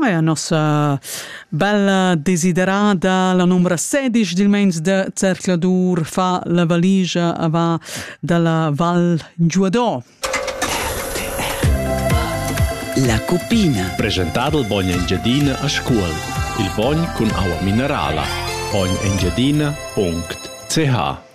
Eia nossa bella desiderada, la numbra sedisch dil meins de Zercladur fa la valigia a va dalla Val Giuador. La cupina. Presentado il bogn Engiadina a Scuol. Il bogn cun aua minerala. Bogn Engiadina.ch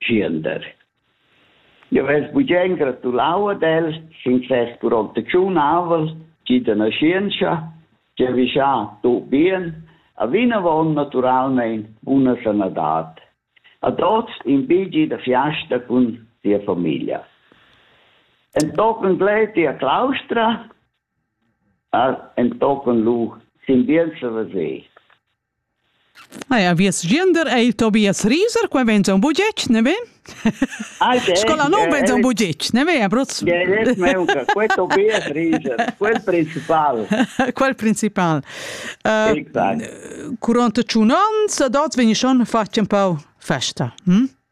Schiender. Eu vess bugen gratulau ad els sin ses curontatschunavel schi da naschientscha, giavüschà tuot bien, e vinavon naturalmein buna sanadad. A tuots in bigi da fiasta cun sia famiglia. Entochen Gleti a Claustra, a entochen lu sin Bienza da See. Ah ja, vies gender ei Tobias Rieser, qua vegn un bugetg, ne ve? Scola non vegn un bugetg, ne ve, Abruz? Quel Tobias Rieser, quel principal. Quel principal. Curont tschun ans, da dots vegni schon fatg un pau festa, hm?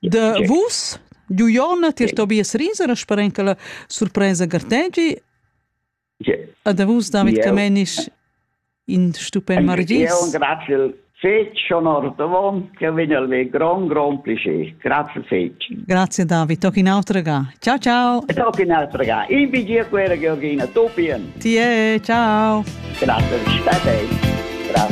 De vus, du Jonna, tier Tobias Rieser, a sparenca surpresa gartegi. A de vus, David Camenisch, in stupend margis. Io grazie fece onor davon che vegna al me gran gran piacere. Grazie fece. Grazie David, toc in altra ga. Ciao ciao. Toc in altra ga. In vigia quera Georgina, tu pien. Tie, ciao. Grazie, state. Grazie.